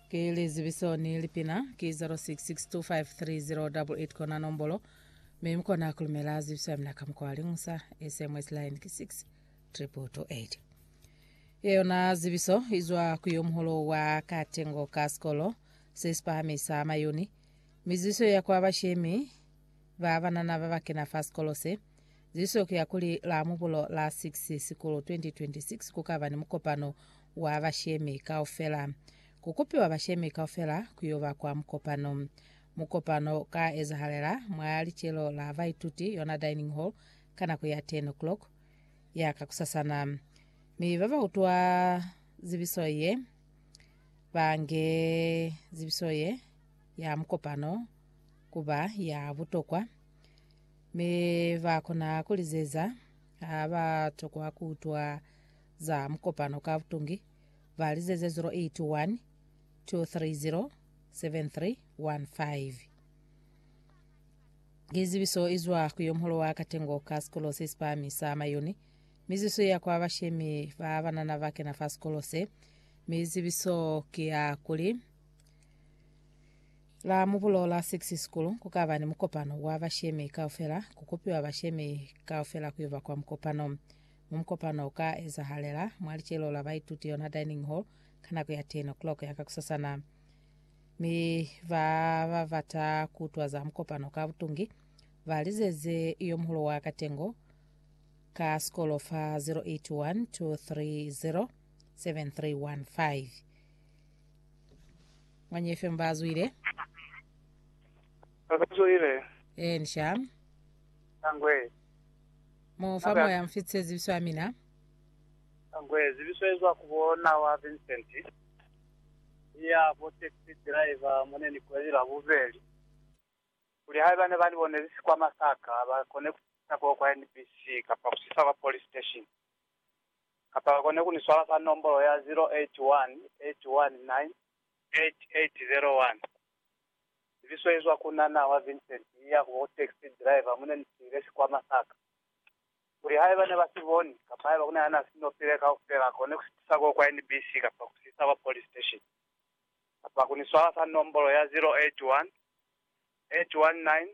Ki lizibiso ni lipina ki 0662530888 kona nombolo mi mukona kulumela zibiso ya mina ka mukwa wa lingusa SMS line ki 6 triple to 8 yeyona zibiso izwa ku yo muholo wa katengo ka sikolo se sipahamisa mayuni mizibiso ya kwa bashemi ba banana ba bakena fa sikolo se Ziso ki ya kuli la Mubulo la 6 Sikulu 2026 ku ka ba ni mukopano wa bashemi kaufela. Ku kupiwa bashemi kaufela ku yo ba kwa mukopano. Mukopano u ka ezahalela mwa licelo la baituti, yona dining hall, ka nako ya 10:00 ya kakusasana. Mi ba ba utwa zibiso ye ba nge zibiso ye ya mukopano ku ba ya butokwa. Mi ba kona ku lizeza ha ba tokwa ku utwa za mukopano ka butungi, ba lizeze 081 230 7315. Ki zibiso izwa ku yo muholo wa katengo ka sikolo se sipahami sa Mayoni, mi zibiso iya kwa bashemi ba banana ba kena fa sikolo se, mi zibiso ki ya kuli La Mubulo la 6 sikulu kukaba ni mukopano wa bashemi kaufela, kukopiwa bashemi kaufela kuyuba kwa mukopano. Mo mukopano uka ezahalela mwa licelo la baituti yona dining hall ka nako ya 10 o'clock ya kakusasana. Mi ba ba bata kuutwa za mukopano ka butungi ba lizeze yo muhulu wa katengo ka sikolo fa 081 230 7315. Manye FM bazwile. Babazwile. Eh, nisha. Angwe. Mofa Nabe- moya mfitse zibiso ya mina. Angwe zibiso ezwa kubona wa Vincent. Ya bo taxi driver mone ni kweli la bubeli. Kuli hae bane bani bone zisi kwa Masaka ba kone kusa kwa kwa NBC kapa kusisa kwa police station. kapa bakone ku ni swala ka nombolo ya 0818198801. Zibiso izwa ku na na wa Vincent iya ku ba ku taxi driver mu ne ni siile sikwama sa ka. Kuli haiba ne ba si boni, kapa haiba ku na ya na si nopile kaufela, akone ku si tisa ko kwa NBC kapa ku si isa kwa police station, kapa ku ni swala ka nombolo ya 0818198801.